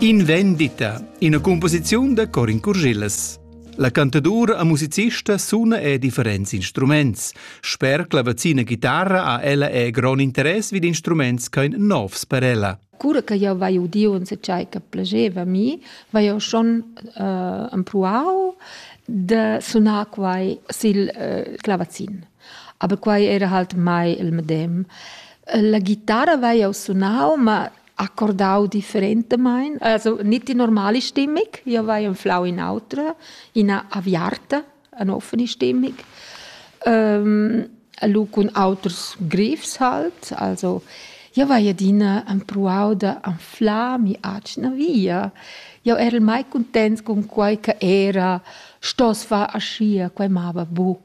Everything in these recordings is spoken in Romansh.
In vendita, ina cumposiziun da Corin Curschillas. La cantadura e musicista suna e differents instruments. Sper clavazina chitarra ha ella e grond interess vid instruments ch'ein novs per ella. Cura che jau vai udiu en tgei che plageva mi, vai jau schon uh, empruau de sunar quai sil uh, clavazin. Aber quai era halt mai il medem. La ghitara vai jau sunau, ma accordau differentamain, also nicht die normale Stimmung. Io vai anflau in autra, ina aviarta, eine offene Stimmung. Ähm, lu cun auters grifs halt, also io vai adina empruau da anflar mi atgna via. Io era mai contents con quai che era, stos far aschia, quai mava bu.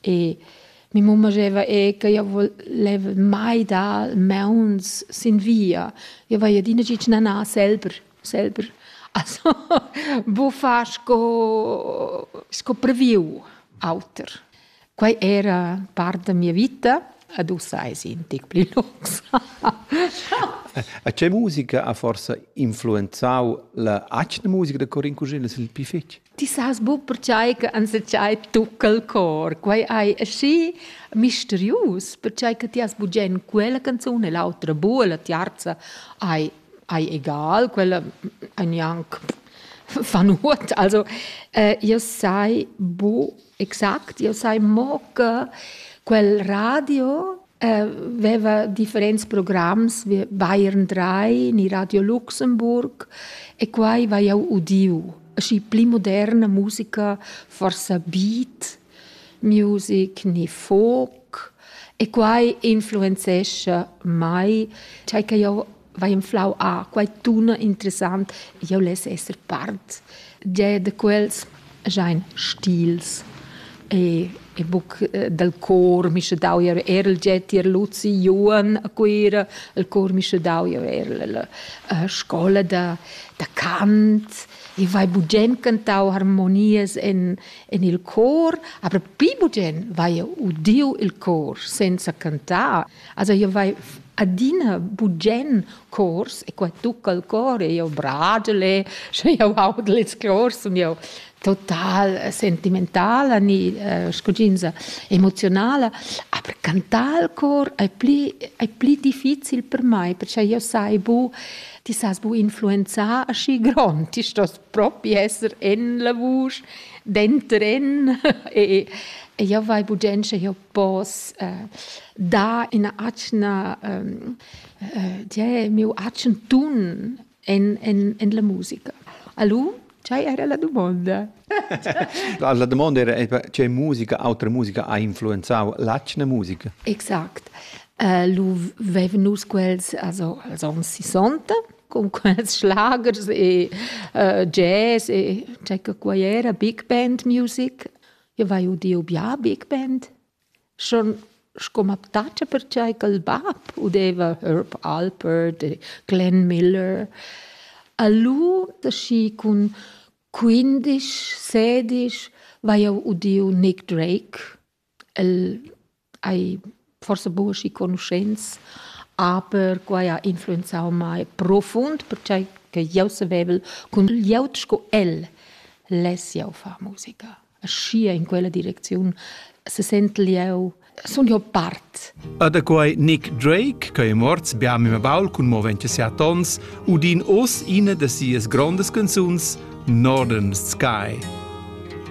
E mia mamma diceva eh, che io voleva mai dar mauns sin via. Io vai adina gitg nanar selber, selber. Also, buffar sco, sco previu auter. Quai era part da mia vita, ad ussa è un tic pli lungs. A che musica ha forse influenzau la atgna musica da Corin Cusin, il più fetg? Ti sas buc pertgei che enzatgei tucca il cor. Quei ei aschi misterius, pertgei che ti has bugen quella canzun e l'autra bu, la tiarza ei, ei egal, quella ei gnanc fa nuot. Also, äh, io sai bu Exact, io sai mo che quel radio eh, veva differents programs, Bayern 3, ni Radio Luxemburg e quai vai jau udiu. Aschi pli moderna musica, forsa beat music, ni folk e quai influenzescha mai, cai che jau vai inflau a quai tuna interessant jau less esser part gia da quels jain stils e e buc eh, dal cor mi sche dau ir er il jet ir Luzi Juan a Cuira il cor mi sche dau ir er la eh, scola da da Kant e vai bugen cantau harmonias en en il cor aber pi bugen vai udiu il cor senza cantar Also io vai adina bugen cors e qua tucca il cor e io bragel e sche io audel ils cors sun io total sentimentala ni uh, scuginza emozionala aber cantar il cor è pli è pli difficil per mai perché io sai bu ti sas bu influenzar aschi grond ti stos propi esser en la vusch dentren e e io vai bu gen sche io pos eh, dar ina atgna ehm, eh, die, miu atgn tun en, en, en la musica. Alu, ce era la domanda? la domanda era ce musica, autra musica ha influenzau l'atgna musica. Exact. Uh, lu veven nus quels also als ons 60 con quels schlagers e uh, jazz e c'è che qua era big band music Eu vai udieu bia big band, schon sco m'aptacha perchai ch'el bap udeva Herb Alpert e Glenn Miller. A lu, da schi cun quindisch, sedisch, vai eu udieu Nick Drake. El hai forsa buca schi conuschents, aber quai ha influenzau mei profund, pertgei che jeu savevel cun glieud sco el less jeu far musica. Aschia in quella direcziun sesentel jeu sun jeu part. E da quei Nick Drake, che è morts bia mia baul cun mo 27 onns, udin oz ina da sias grondas canzuns, Northern Sky.